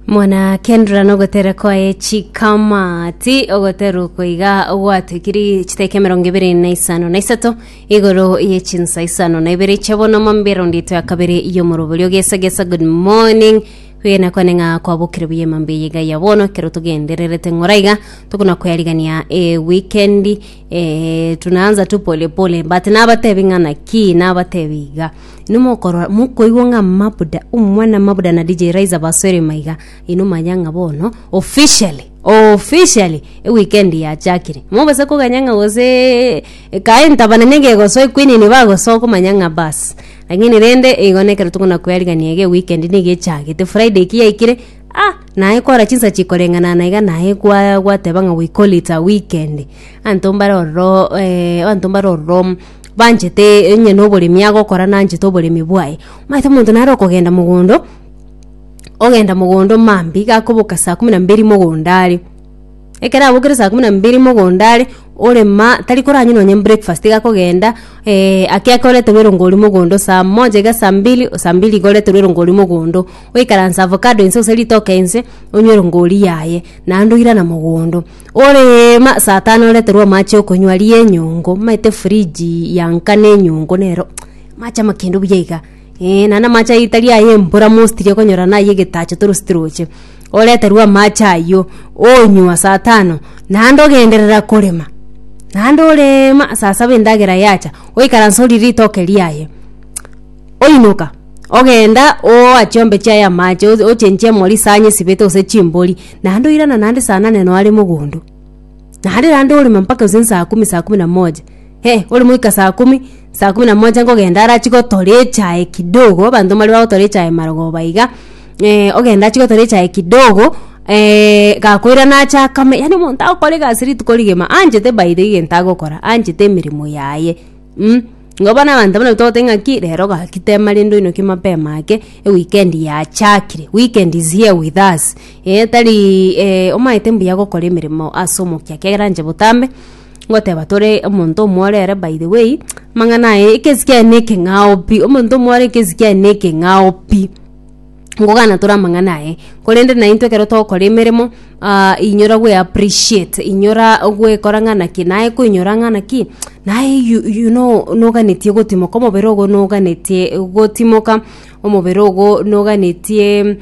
mwanakendora nogotera kwaye chikamati ogotera oko iga gwatwikiri chiteka emerongo ibere na isano na isato igoro ye chinsa isano na ibere chia bono mambera ondito ya kabere yomorobori ogesa gesa good morning kwegena kwane ng'a kwabokire buya emambe eye iga ya bono ekero togendererete ng'ora iga tokona koyarigania e wikendi eh, tunaanza tu pole pole but nabatebi ng'a naki nabatebi iga Inwe mokorora, mokoigwa ng'a Mabuda, omwana Mabuda na DJ Raiza basoire maiga, inwe manya ng'a bono officially officially eweekend yachakire. Mobase koganya ng'a gose kae ntabana negegosoa equeen nibagosoa okomanya ng'a bas. Lakini rende igo nekero tokona koerigania iga eweekend niga echagete. Friday ki yaikire, ah naye kora chinsa chikoreng'ana na iga naye kwa gwateba ng'a we call it a weekend. Abanto mbare ororo abanto mbare ororo banchete onye noboremi agokora nanchete oboremi bwaye. Omanyete omonto nare okogenda mogondo, ogenda mogondo mambia iga akoboka saa kumi na mbili mogondo are. Ekero abokire saa kumi na mbili mogondo are, orema tari koranywa nonye breakfast iga akogenda ake ake oreterwa erongo oria mogondo saa moja iga saa mbili, saa mbili iga oreterwa erongo oria mogondo, oikaranse avocado inse gose ritoke inse, onywe erongo oria yaye, naende oirana mogondo. Oreema saa tano oreterwa amache okonywa aria enyongo omanyete fridge yanka na enyongo nero amache ama kendo buya iga eh, naende amache aywo tari aya embura mostly okonyora na aya egetacho toroseti roche, oreterwa amache aywo onywa saa tano naende ogenderera korema naende oreema saa saba endagera yacha oikaranse orie ritoke riaye. Oinoka, ogenda ooa chiombe chiaye amache, o- ochenchie emori isanye esibete gose chimbori, naende oirana naende saa nane noo are mogondo. Naende naende oreme mpaka gose saa kumi saa kumi na moja, eh ore moika saa kumi, saa kumi na moja nkogenda arachie gotora echae kidogo, abanto mbare bagotora echae marogoba iga, ogenda achie gotora echae kidogo gakoirana ache akame, yaani omonto agokora egasi rituko rigima, anchete by the way egento agokora, anchete emeremo yaye mh. Igo bono abanto abana togoteba ng'aki rero gaki tema rende oinoke mapema ake eweekend yachakire weekend is here with us eh tari eh omanyete mbuya gokora emeremo ase omokia ekiagera inche botambe ngoteba tore omonto omwe ore ere by the way amang'ana aye ekesi kiaye na ekeng'ao pi omonto omwe ore ekesi kiaye na ekeng'ao pi. nkogana tore amang'ana aye, korende naintwe ekero togokora emeremo ah inyora gwe appreciate, inyora gwekora ng'a naki naye koinyora ng'a naki naye you you know noganetie gotimoka omobere ogo noganetie gotimoka, omobere ogo noganetie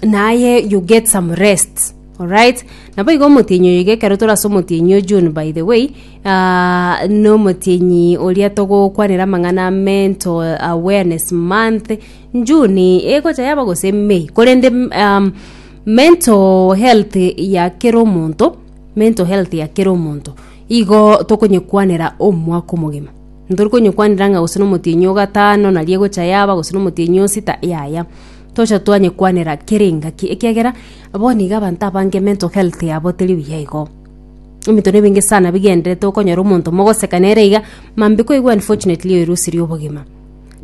naye you get some rest alright. Naboigo omotienyi oyo iga ekero tore ase omotienyi o June by the way. Nomotienyi oria togokwanera amang'ana a Mental Awareness Month, June egocha yaba gose May, korende um, mental health ya kera omonto, mental health ya kera omonto, igo tokonyekwanera omwaka omogima. Ntori konyekwanera ng'a gose nomotienyi o gatano naria egocha yaba gose nomotienyi o sita, yaya. Tocha twanyekwanera kera engaki, ekiagera bono iga abanto abange mental health yabo teri buya igo. ebinto na ebinge sana bigenderete okonyora omonto mogoseka nere iga mambi koigwa unfortunately oyo erusi ria obogima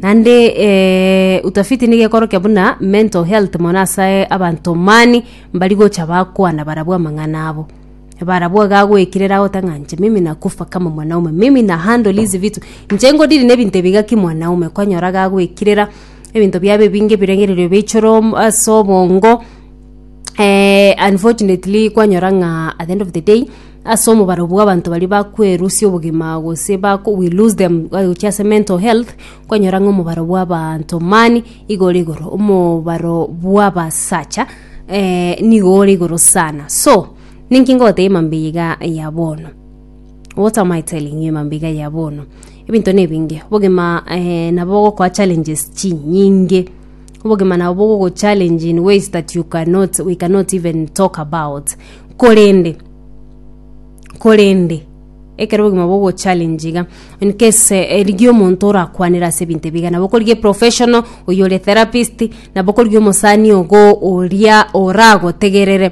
naende eh, utafiti nigo ekorokia buna mental health mono ase abanto mani mbari gocha bakwana barabwo amang'ana abo barabwo iga agoekerera agote ng'a inche mimi nakufa kama mwanaume mimi na handle hizi vitu inche ngodiri na ebinto ebi iga kimwanaume kwanyora iga agoekerera ebinto biaye ebinge ebirengererio bia ichoro ase obongo. eh, unfortunately kwanyora ng'a at the end of the day ase omobaro bw'abanto baria bakwerusia obogima gose bako we lose them gochia ase mental health kwanyora ng'a omobaro bw'abaanto mani igo ore igoro omobaro bw'abasacha eh, nigo ore igoro sana so ninki ngoteba emambe eye iga ya bono what am I telling you emambe iga ya bono ebinto na ebinge obogima eh, nabo bogokoa challenges chinyinge Obogima nabo bogogochallenge in ways that you cannot, we cannot even talk about. Korende, korende, ekero obogima bogochallenge iga, in case eh, rigia omonto orakwanere ase ebinto ebiga, nabo okorigia eprofessional, oyo ore etherapist, nabo okorigia omosani ogo oria oragotegerere.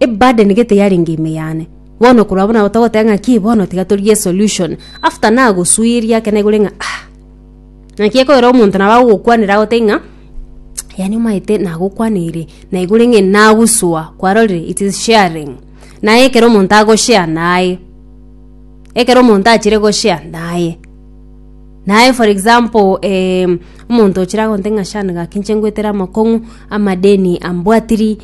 Eburden gete yarenge ime yane. Bono korwa abwo nabo togoteba ng'a ki bono tiga torigie solution. After nagosuiria ake naigure ng'a ah. Naki ekoera omonto nabo agogokwanera agotebi ng'a yaani omanyete nagokwaneire naigure ng'a nagosoa kwarorire it is sharing. Naye ekero omonto agoshare naye ekero omonto achire goshare naye. Naye for example omonto ochire agote ng'a Shan gaki inche ngoetere amakong'u amadeni ambwatiri.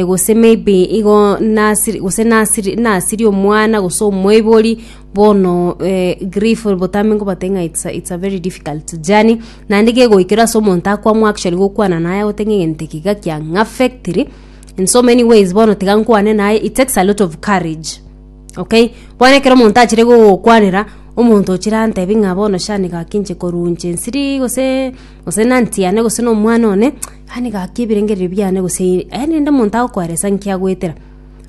gose maybe igo nasiri gose nasiri nasirie omwana gose omoibori bono eh, grief botambe nkobate ng'a it's a, it's a very difficult journey naende gegoikera ase omonto akwamwa actually gokwana naye agote ng'a egento eke iga kiang'affectiri in so many ways bono tiga nkwane naye it takes a lot of courage okay bono ekero omonto achire gogokwanera omonto ochire antebi ng'a bono shani gaki inche korwa inche nsiri gose gose na aunty yane gose na omwana one. Aye nigo akia ebirengererio biane, gose aye ninde omonto agokoeresa nki agoetera?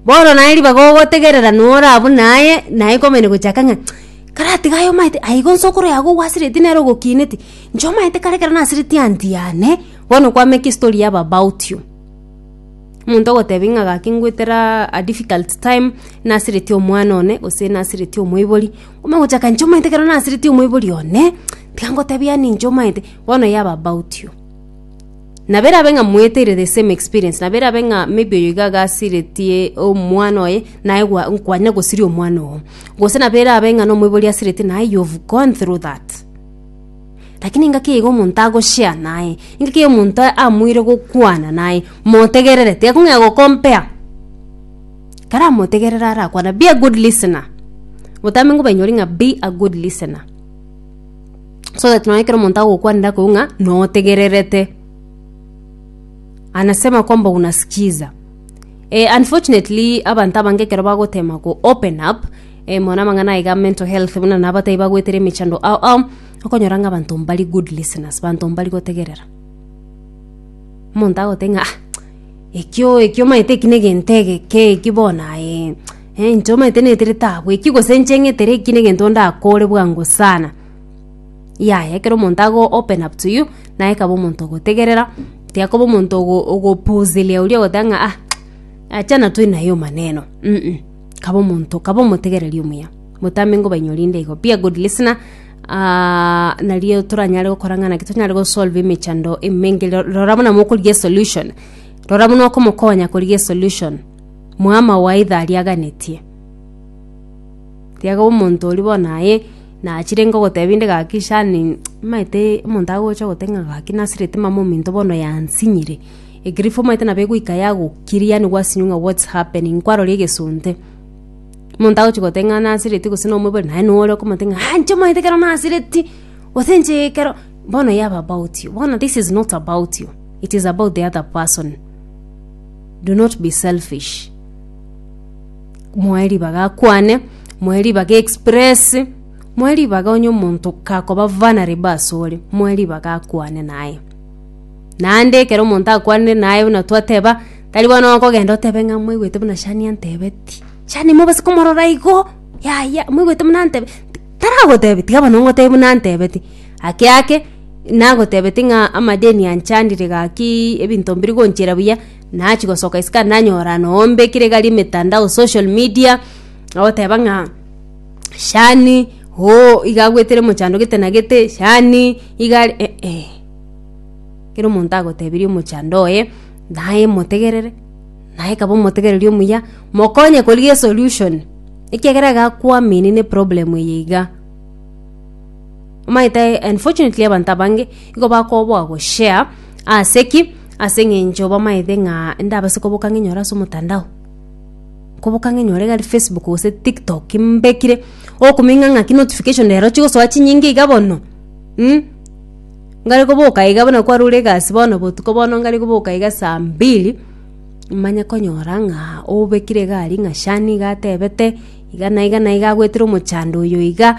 Bono naye ribaga ogotegerera nora abwo naye, naye komanya gochaka ng'a karatiga aye omanyete aigo nse okoroia iga ogwasireti nere ogokineti, inche omanyete kare ekero nasireti anti yane, bono kwameka estory ya baba out you. Omonto ogotebia ng'a gaki ngoetera a difficult time, nasireti omwana one, gose nasireti omoibori, omanye gochaka inche omanyete ekero nasireti omoibori one, tiga ngotebia ninche omanyete, bono ya baba out you. nabera abe ng'a mweteire the same experience nabera abe ng'a maybe oyo iga agasiretie omwana oye naye gwa- kwanyare gosiria omwana oo gose nabera abe ng'a nomoibori asiretie naye you've gone through that lakini engaki eyeiga omonto ago share naye engaki eyo omonto amoire gokwana naye motegerere tiyakong'ea go compare karamotegerere arakwane be a good listener obotambe ngobanyori ng'a be a good listener. so that nonya ekero omonto agokwanera akoigwe ng'a notegererete anasema kwamba unasikiza eh unfortunately abanto abange ekero bagotema go open up eh mono amang'ana aiga mental health buna na abatari bagoetera emechando ao ao, okonyora ng'a abanto mbari good listeners abanto mbari gotegerera. Omonto agotebi ng'a ah ekio ekio omanyete eki na egento egeke eki bono aye. Eh, inche omanyete netere tabweki gose inche ng'etere eki negento ndakore bwango sana yaya ekero omonto ago open up to you naye kaba omonto ogotegerera tiakoba omonto ogo ogopuzilia oria ogoteba ng'a ah achana tu naye omaneno mh kaba omonto kaba omotegereri omuya botambe ngobaini orinde igo be a good listener nario toranyare gokora ng'a naki tonyare gosolve emechando emenge ro rora buna mokorigia esolution rora buna okomokonya korigia esolution. Mwama waito ariaganetie. Riaga omonto oria bono aye nachire ingo goteba inde gaki shani maete omonto agocha gote ng'a gaki nasirete mama ominto bono yansinyire. Egriff omaete nabo egoika yagokiri yaani gwasinywa ng'a what's happening kwarora egesonte. Omonto agochi gote ng'a nasireti gose nomoibori naye noyo ore okomote ng'a aa inche omaete ekero nasireti gose inche ekero bono yaba about you. Bono this is not about you it is about the other person. Do not be selfish. Moe ribaga akwane, moe ribaga express, moe ribaga onye omonto kakoba vulnerable ase ore, moe ribaga akwane naye. Naende ekero omonto akwanire naye buna twateba, tari bono okogenda otebe ng'a mwaigwete buna Shania antebeti, Shania mobase komorora igo, yaya, mwaigwete buna antebeti, taragotebi, tiga bono ngotebi buna antebeti. Ake ake nagotebeti ng'a amadeni anchandire gaki ebinto mbiri gonchera buya nachia gosoka isiko ande nanyora noombe ekero egari emetandao social media ogoteba ng'a shani ooh iga agwetere mochando gete na gete shani iga are eeh ekero omonto agotebirie omochando oye naye motegerere naye kaba omotegereri omuya mokonye korigia esolution ekiagera iga akwamini neproblem eye iga. omaete unfortunately abanto abange igo bakoboa goshare ase ki ase eng'encho bamaete ng'a ndabase koboka ng'inyore ase omotandao koboka ng'inyore gari facebook gose tiktok mbekire okomenya ng'aki notification rero chigosoa chinyinge iga bono ngare koboka iga buna kwarure egasi bono botuko bono ngare koboka iga saa mbili manye konyora ng'a obekire iga aria ng'a shani iga atebete iga na iga na iga agwetire omochando oyo iga.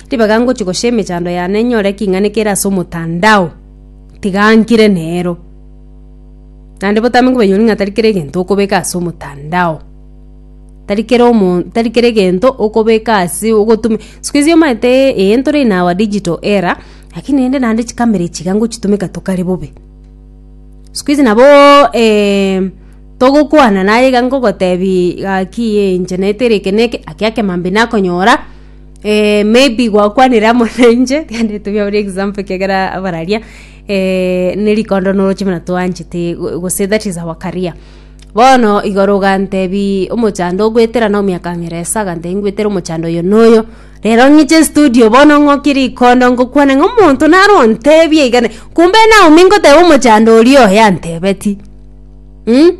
Ribaga ngochia goshia emechando yane nyore eking'anikire kere ase omotandao, tiga nkire nero. Naende botambe nkobaibori ng'a tari kera egento okobeka ase omotandao, tari kera omonto tari kera egento okobeka ase ogotuma sikuizi omanyete eh ntore in our digital era, lakini rende naende chikamera echi iga ngochitumeka tokare bobe. Sikuizi naboo togokwana naye iga ngogotebi gaki eh inche naetereke neke, gaki akemambia nakonyora. Eh, maybe gwakwanire amo nainche rende tobia buri example ekiagera abararia eh, ne rikondo noroche buna twanchete go- gose that is our career bono igoro ogantebi omochando ogwetera na omiaka ng'ere esa agantebi ngwetere omochando oyo na oyo rero ng'iche studio bono ng'okie rikondo ngokwana ng'a omonto naro ontebie igane kumbe naomi ngoteba omochando oria oye antebeti mm?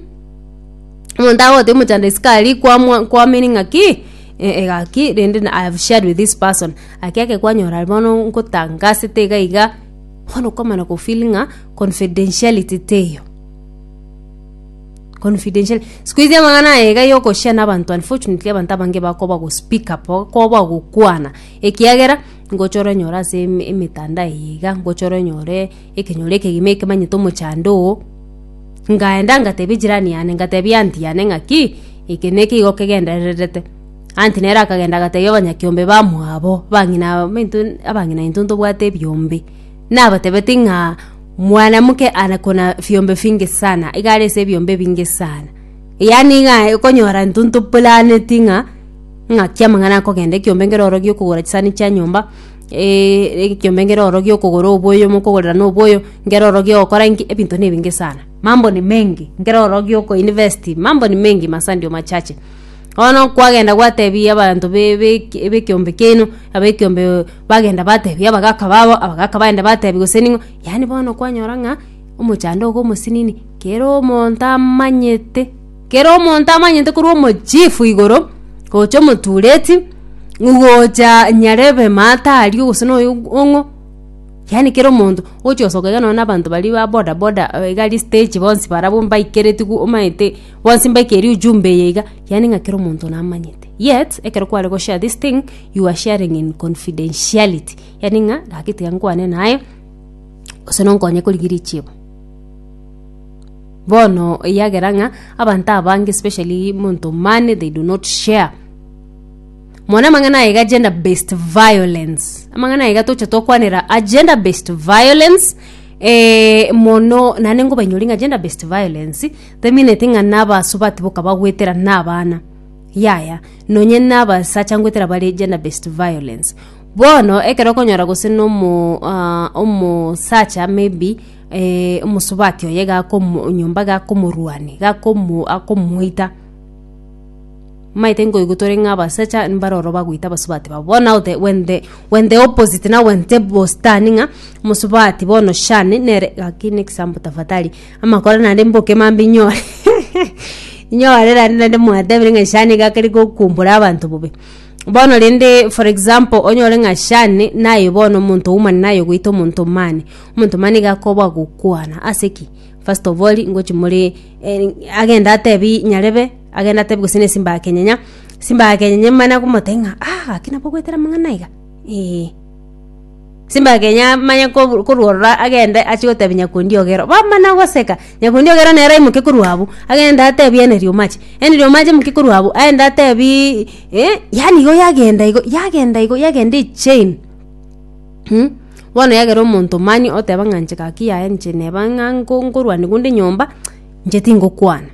omonto agoteba omochando isiko aria kwamwa- kwaminia ng'a ki. Egaki rende I have shared with this person gaki eke kwanyora bono nkotanga ase tiga iga bono okomana ko feel ng'a confidentiality teiyo confidentiality siko izi amang'ana aya iga yo ko share na abanto unfortunately abanto abange bakoba go speak up bakoba gokwana ekiagera ngochore nyore ase emetandao eye iga ngochore nyore. ekenyoro ekegima ekemanyete omochando oo. Ngaenda ngatebia jirani yane ngatebia anti yane ng'aki, eke nekigo kegendererete. Anti nere akagenda agatebia abanyakiombe bamwabo, abang'ina baminto abang'ina baito ntobwate ebiombe. Nabatebeti ng'a mwanamke anakona fiombe finge sana, iga are ase ebiombe ebinge sana. Yaani iga okonyora intwe ntoporaneti ng'a ng'aki amang'ana akogenda ekiombe nkeroro giokogora chisani chia nyomba. eeh, ekiombe nkere oro giokogora oboyo mokogorera na oboyo, nkere oro giogokora inki, ebinto na ebinge sana, mambo ni mengi, nkere oro gioko invest mambo ni mengi masaa ndio machache. Bono kwagenda gwatebi abanto be- be bekiombe kiaino, abekiombe bagenda batebi abagaka babo, abagaka bagenda batebi gose ning'o, yaani bono kwanyora ng'a omochando iga omosini kera omonto amanyete. Kera omonto amanyete korwa omochifu igoro, gocha omotureti, gocha nyarebe maata aria gose noyo ong'o, yaani kera omonto, ogochi gosoka iga nonye na abanto baria ba boda boda iga aria stage bonsi barabwo mbaikereti gu omanyete bonsi mbaikeiri ujumbe eye iga, yaani ng'a kera omonto namanyete, yet ekero kware go share this thing, you are sharing in confidentiality, yaani ng'a gaki tiga nkwane naye, gose nonkonye korigia richibo. Bono eyagera ng'a abanto abange especially monto money they do not share mone amang'ana aye iga gender based violence amang'ana aye iga toche tokwanera a gender based violence eh, mono naende nkobainyori ng'a gender based violence temineti ng'a na abasubati boka bagwetera na abana yaya nonye na abasacha ngwetera bare gender based violence bono ekero okonyora gose na omo ah, omosacha maybe eh, omosubati oye gakomo- nyomba gakomorwania gakomo- akomoita maete nkoigwa tore ng'a abasacha mbare ororo bagoita abasubati babo bono naye ote- when the- when the opposite now when the bostani ng'a omosubati bono shani nere gaki ne example tafadhali amakoro naende mboke mambia inyore inyore naende naende mwatebire ng'a shani iga keri gokumbora abanto bobe. bono rende for example onyore ng'a shani naye bono omonto oumane naye ogoita omonto omani omonto omani iga akoba ogokwana ase ki first of all ngochi more eh, agende atebi nyarebe agende atebi gose na esimbakenyenya simbakenyenya emana komotebia ng'a ah gaki nabo ogoetera amang'ana iga eh. Simake nyamanye kobu- korwa ororo agende achie gotebia Nyakondiogera. Bamana goseka, Nyakondiogera nere aimoke korwa abwo, agende atebie Eneriomaki. Eneriomaki aimoke korwa abwo, aende atebiiii eh, yaani igo yagenda igo, yagenda igo, yagenda echain. Mh, bono yagera omonto mani oteba ng'a inche gaki yaya inche neba ng'a nko- nkorwanigwa onde nyomba, inche tingokwana.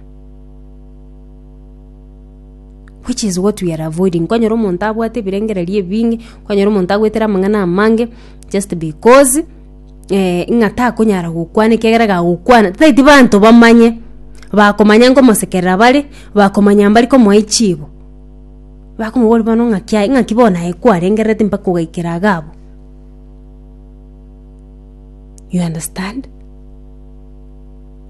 which is what we are avoiding kwanyora omonto abwate ebirengererio ebinge kwanyora omonto agoetera amang'ana amange just because eh, ng'a takonyara gokwana ekiagera iga agokwana tataeti banto bamanye bakomanya nkomosekerera bare bakomanya mbare komoa echibo bakomobori bono ng'aki aye ng'aki bono aye kwarengererete mpaka ogaikera iga abwo you understand.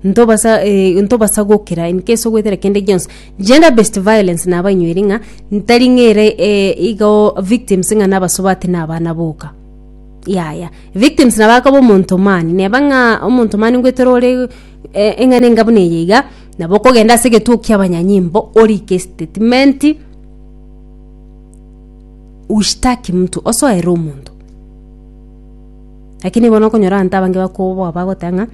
Ntobasa eh, ntobasa gokira in case ogwetera kende gionsi gender based violence naba inyweri ng'a ntari ng'ere eh, igo victims ng'a nabasobati na abana boka yaya victims naba akaba omonto mani neba ng'a omonto mani ngwetera ore eh, eng'ana enga buna eye iga nabo okogenda ase egetuo kia abanyanyimbo orike statement ushtaki mtu osoere omonto Lakini bono okonyora abanto abange bakoboa bagoteba ng'a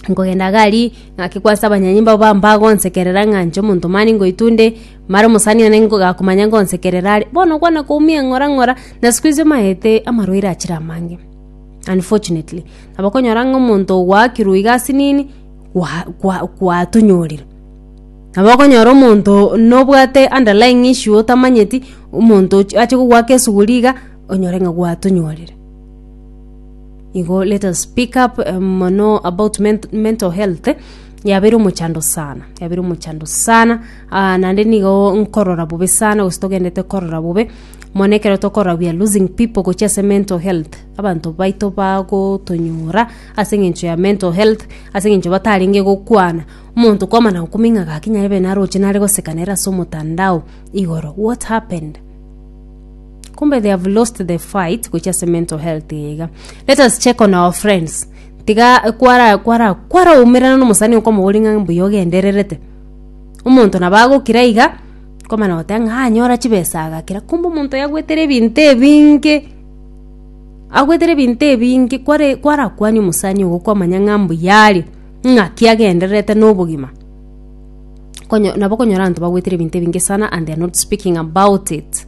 nkogenda gari ng'ake kwase abanyanyi mbabo ba- mbagonsekerera ng'a inche omonto mani ngoitwa onde mare omosani one ngakomanya ngonsekerera are. Bono okwana koumia ng'ora ng'ora na sikuizi omaete amarwaire achire amange unfortunately. Nabo okonyora ng'a omonto ogwakirwe iga ase nini gwa- gwa- gwatonyorire. Nabo okonyora omonto nobwate underlying issue otamanyeti omonto ochi ache kogwaka esuguri iga. onyore ng'a gwatonyorire igo let us speak up um, mono about ment mental health yabeire omochando sana yabeire omochando sana uh, nande nigo nkorora bobe sana gose togendete korora bobe mono ekero tokorora we are losing people gochia ase mental health abanto baito bagotonyora ase eng'encho ya mental health ase eng'encho batarenge gokwana omonto kwamana gokumia ng'a gaki nyarebe naroche nare goseka nere ase omotandao igoro what happened kumbe they have lost the fight gochia ase mental health iga let us check on our friends tiga kwara kwara kwara umerana no musani okomobori ng'a mbuya ogendererete omonto nabo agokira iga komana goteba ng'a anyora chibesa agakira kumbe omonto oyo agwetere ebinto ebinge agwetere ebinto ebinge kware kwara kwania omosani ogo kwamanya ng'a mbuya are ng'aki agendererete no obogima konyo nabo okonyora abanto bagwetere ebinto ebinge sana and they are not speaking about it.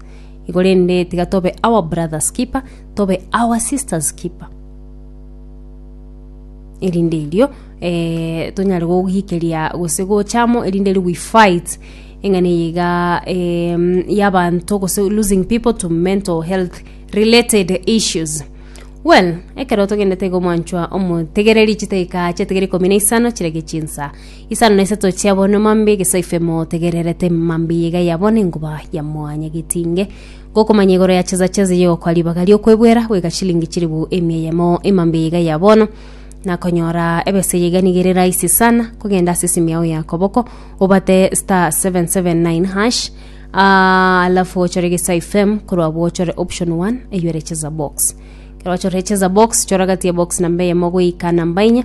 Igo rende tiga tobe our brother's keeper, tobe our sister's keeper. Erinde erio eh, tonyare gogikeria gose gocha amo erinde erio we fight eng'ana eye iga em, y'abanto gose losing people to mental health related issues well ekero togendete igo mwanchwa omotegereri chitaika chiatigere ikomi na isano chirege chinsa Isano na isato chia bono emambe egesaife motegererete emambe eye iga yabono enguba ya mwanya getinge gokomanya igoro ya chesa chesa yogokwa ribaga riokwebwera goika chilingi chiribu emia eyemo emambe eye iga yabono nakonyora ebesa eye iga niga ere rahisi sana kogenda ase esimu yao ya koboko obate star 779 hash ah, alafu ochore egesaife korwa abwo ochore option 1 eywo ere chesa box ekero wachorire chesa box chora gati ya box namba eyemo goika namba inya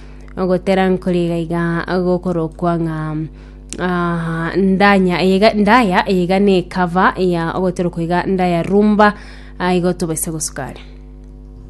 ogotera nkore iga iga gokorokwa ng'a ah, ndanya eye iga- ndaya eye iga na ekava ya ogoterokwa iga ndaya rumba ah, igo tobaisa gosukare